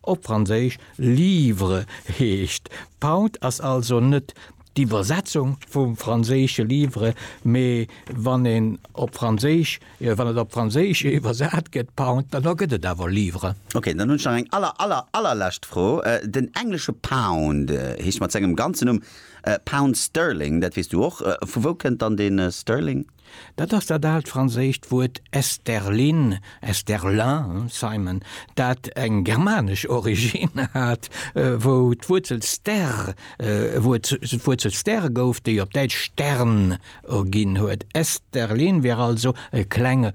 Op Franséisch livre heescht Pound, ass also net d'Iwwersetzung vum franséische livre, mee wann een op Franséisch, wann et op Franséisch iwwersat gëtt Pound, dann da gëtt et awer livre. Ok, dann hunn ech nach eng aller, aller, allerlescht Fro. Den englesche Pound heescht mat sengem ganzen Numm Pound Sterling, dat weess du och. Vu wou kënnt dann dee Sterling? Dat ass dat aalt franséischt Wuert Esterlin, Esterlin, Simon, dat eng germanesch Originn hat, wou d'Wuerzel ster Wuerzel ster gouf, déi op Däitsch Stern erginn huet. Esterlin wier also e klenge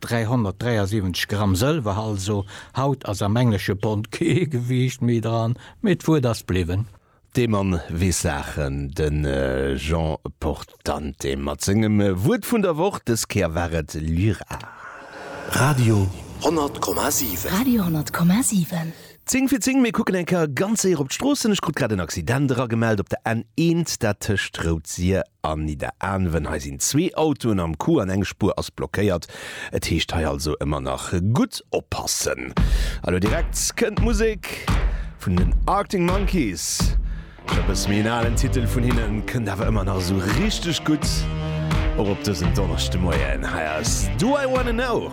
373 Gramm Sëlwer also. Haut ass am englesche Pond kee Gewiicht méi dran, mee d'Wuert ass bliwwen. Dee Mann weess Saachen, de Jean Portante mat sengem Wuert vun der Woch. Dës Kéier war et Lyra. Radio 100,7. Radio 100,7. Zing fir zing, mir kucken eng Kéier ganz séier op d'Stroossen. Ech krut grad en Accident eragemellt op der N1, dat tëscht Rout-Sir an Nidderaanwen. Hei sinn zwee Autoen am Coup an eng Spuer ass blockéiert. Et heescht hei also ëmmer nach gutt oppassen. A lo direkt kënnt d'Musek vun den Arctic Monkeys. E bësse méi en alen Titel vun hinnen, kënnt awer ëmmer nach esou richteg gutt och op dësen Donneschdemoien. Hei ass Do I Wanna Know.